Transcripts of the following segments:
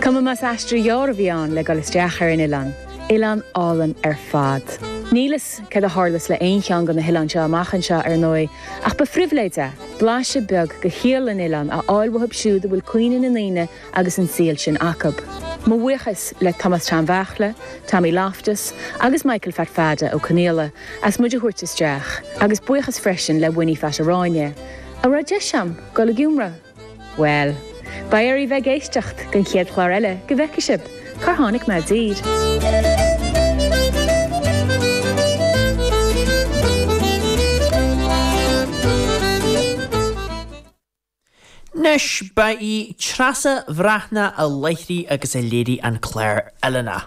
Cuma más aistear gearr a bhí ann le dul isteach ar an oileán, oileán álainn ar fad. Níl fhios céard a tharlas le aon cheann de na hoileáin seo amach anseo ar ndóigh, ach ba phribhléid é, blaiseadh beag de shaol an oileáin a fháil uathub siúd a bhfuil cuimhne na ndaoine agus an saol sin acub. Mo bhuíochas le Tomás Tom Bheartla, Tommy Loftus agus Michael Phat Pheada Ó Conaola as muid a thabhairt isteach, agus buíochas freisin le Winnie Phat Aráinne, a raibh deis a'm dul i gCiúmra! Bhuel. Beidh oraibh a bheith ag éisteacht don chéad chlár eile go bhfeice sibh cár tháinig mé i dtír. Anois ba í Treasa Bhreathnach a láithrigh agus a léirigh an clár Oileáin.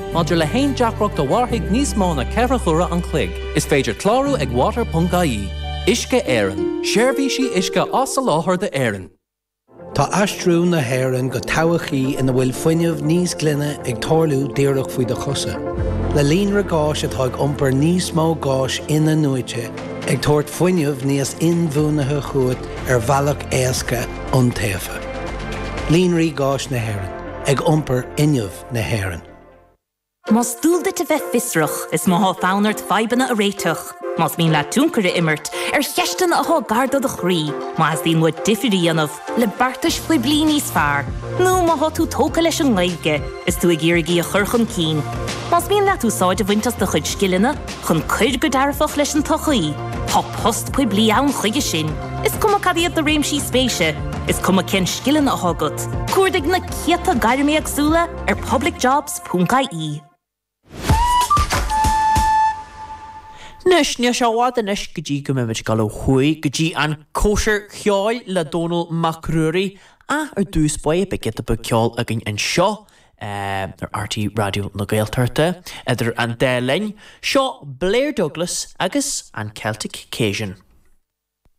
Maidir le haon deacracht a mhairfidh níos mó na ceithre huaire fichead an chloig, is féidir clárú ag water.ie. Uisce Éireann, seirbhísí uisce á soláthar d'Éirinn. Tá aistriú na hÉireann go todhchaí ina bhfuil fuinneamh níos glaine ag tarlú díreach faoi do chosa. Le líonra gáis atá ag iompar níos mó gáis in-athnuaite, ag tabhairt fuinneamh níos inbhuanaithe chugat ar bhealach éasca, iontaofa. Líonraí Gáis na hÉireann, ag iompar fuinneamh. na hÉireann. Más dual duit a bheith fiosrach, is má tá fonn ort fadhbanna a réiteach. Más mian leat tionchar a imirt ar cheisteanna atá gar do do chroí, má theastaíonn uait difear a dhéanamh le beartais phoiblí níos fearr, nó má tá tú tógtha leis an nGaeilge is tú ag iarraidh í a chur chun cinn, más mian leat úsáid a bhaint as do chuid scileanna chun cur go dearfach leis an tsochaí, tá post poiblí ann chuige sin, is cuma cad iad do réimsí spéise, is cuma cén scileanna atá agat. Cuardaigh na. chéadta gairm éagsúil ar publicjobs.ie. Anois, níl sé i bhfad anois go dtí go mbeimid ag dul ó thuaidh go dtí an Chóisir Cheoil le Dónal Mac Ruairí ach ar dtús beidh giota beag ceol againn anseo ar RTÉ Raidió na Gaeltachta idir an dá linn. Seo Blair Douglas agus an Celtic Cajun.